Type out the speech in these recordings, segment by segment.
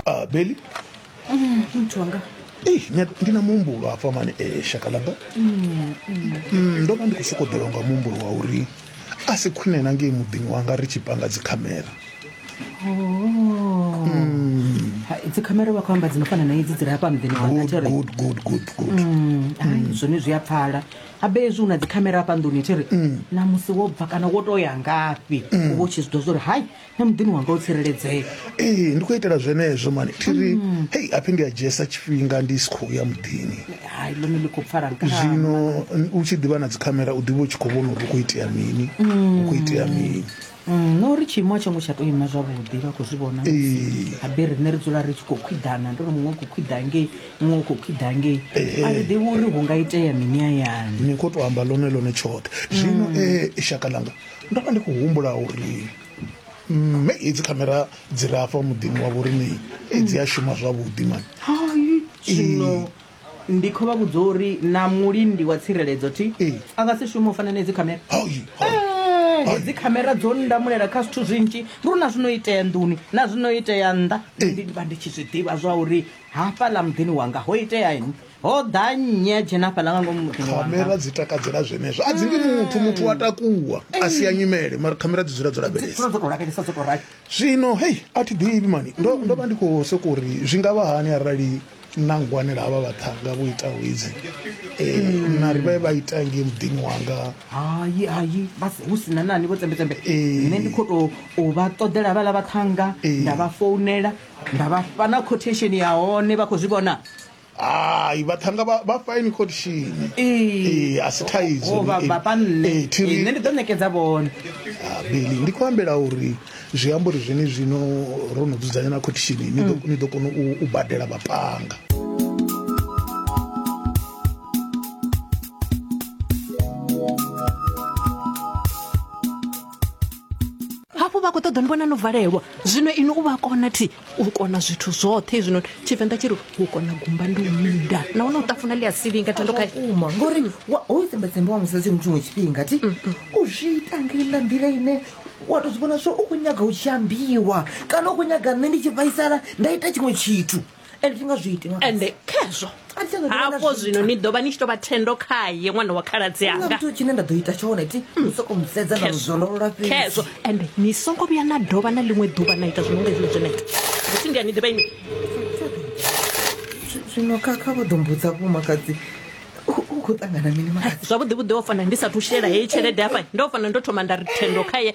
ah, beli mm, mtu wanga Hey, eh, ndina muhumbulo hafha mani e eh, shakalaba mm, mm. mm, ndo vha ndi khou sokoḓelwa nga muhumbulo wa uri a si khwine na ngei muḓini wanga ri tshi panga dzikhamera oh. dzikhamera vha khou amba dzi no fana na idzi dzi re hafha muḓini wanga zwone zwi a pfala abe ezwi u na dzikhamera hafha nḓuni thi ri namusi wo bva kana wo to ya ngafhi uvha u tshi zwi ḓo zwa uri hai na muḓini wanga u tsireledzea ee ndi khou itela zwenezwo mani thiri mm. hei aphi ndi a dzhiesa tshifhinga ndi si khou ya muḓini hai ḽone ḽi khou pfala zwino u tshi ḓivha na dzikhamera u ḓivha u tshi khou vhona uri u khou itea mini u khou itea mm. mini mm, no uri tshiimo a tsho ngo tsha tou ima zwavhuḓi vha khou zwi vhona habe riṋe ri dzula ri tshi khou khwiḓana ndo ri muṅwe u khou khwiḓa ngei muṅwe u khou khwiḓa ngei a ri ḓivhi uri hu nga itea mini ayani ni khou tou amba ḽone ḽone tshoṱhe zwino e shaka ḽanga ndo vha ndi khou humbula uri mme hedzi khamera dzi re afha muḓini wa vhoriṋe dzi a shuma zwavhuḓi mani hai zwino ndi khou vha vhudza uri na mulindi wa tsireledzo ti Ee. a nga si shume u fana na hedzi khamera Hai, hai. Eh, hedzi khamera dzo ndamulela kha zwithu zwinzhi ndi uri na zwino itea nḓuni na zwino itea nnḓa ndi ndi vha ndi tshi zwi ḓivha zwa uri hafhaḽa muḓini wanga ho itea ini ho ḓa nnyi a dzhena hafhaḽa nga ngomu muḓini wanga khamera dzi takadzela zwenezwo a dzi ndi muthu muthu wa takuwa a si ya nyimele mara khamera dzi dzula dzo lavhelesa dzula dzo tou lavhelesa dzo tou rali zwino hei a thi ḓivhi mani ndo ndo vha ndi khou soko uri zwi nga vha hani arali na ngwanela havha vhaṱhanga vho ita wedzi um na ri vhe vha ita ngei muḓini wanga hayi hayi vha si- hu sina nani vho tsembetsembe Eh. nṋe ndi khou tou u vha ṱoḓela havhaḽa vhaṱhanga Eh. nda vha founela nda vha fha na quotation ya hone vha khou zwi vhona hai vhaṱhanga vha- vha fine khotishini Ee, a si thaidzo Ho vha Ee, vhafha nṋe ee, thi ri- Ee, nṋe ndi ḓo ṋekedza vhone Ah, beli ndi khou ambela uri zwi amba uri zwene zwino ro no dzudzanya na khotishini ni ḓo- ni ḓo kona u- u badela vhaṱhanga hafhu vha khou ṱoḓa ni vhona no valelwa zwino inwi u vha kona thi u kona zwithu zwoṱhe hezwinoni tshivenḓa tshi ri u kona gumba ndi u minda nahone u tafuna ḽi a silinga thendo kha uma ngori wa- hoyu tsembetsembe wa musadzi mutshiṅwe tshifhinga ti u zwi ita ngelela nḓila ine wa to zwi vhona zwo u khou nyaga u tshi ambiwa kana u khou nyaga nṋe ndi tshi vhaisala nda ita tshiṅwe tshithu and thi nga zwi iti ṅwana. ende khezwo hafho zwino ni ḓo vha ni tshi tou vha thendo khaye ṅwana wa khaladzi Huna anga muthu tshine nda ḓo ita tshone ti u soko musedza na muzwololola fhedzi khezwo ende ni songo vhuya na dovha na ḽiṅwe ḓuvha na ita zwino nga hezwi zwena ita musi ndi a ni ḓivha ini Zwi- zwino kha kha vho ḓo mbudza vhomakadzi u- u khou ṱangana mini makadzi zwavhuḓi vhuḓi o fana ndi sathu shela heyi tshelede hafha ndo fana ndo thoma nda ri thendo khaye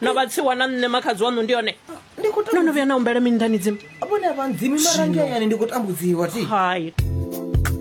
na vhatsiwa na nṋe makhadzi waṋu ndi yone ndi khou no no vhuya na humbela mini nḓani dzimu vhone vha ndzimi mara ngeani ndi khou tambudziwa ti hai